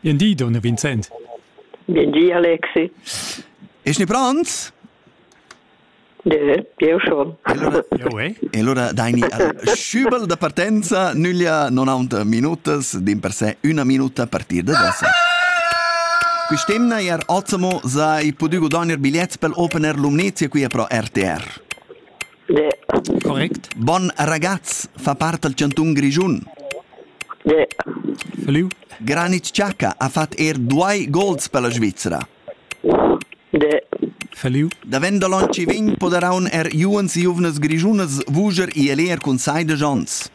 Bien di, Donna Vincent. Bien di, Alexi. Ist nicht Brand? De, io schon. Allora, e allora daini uh, schübel da partenza, nüglia 90 minutas, din per sé una minuta a partire da adesso. Quest'emna er ottimo sai potuto donner bigliet pel opener Lumnezia qui pro RTR. Correct. Bon ragazz fa part dal chantun Grischun. Salut. Granit Xhaka ha fatg er duai gols per la Svizra. Salut. Davent da l'onn vegn poderaun er giuvens e giuvnas grischunas vuger i eleer cun sai da Jons.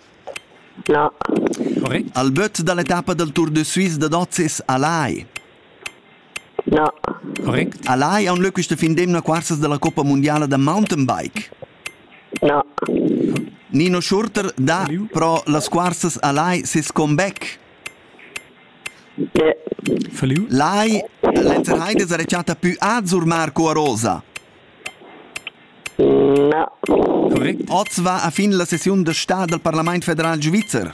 No. Correct. Al böt da l'etappa dal Tour de Suisse da Dozis a Lai. No. Correct? Al hai aunc leu questa fin d'emna cursas dalla Coppa mundiala da mountainbike? No. Nino Schurter dà pro las cursas al hai ses comeback. Ne. Verliu? L'hai Lenzer Heides ha recata più azzur Marco a rosa. No. Correct. Oz va a fin la sessiun da stà dal Parlament federal svizzer.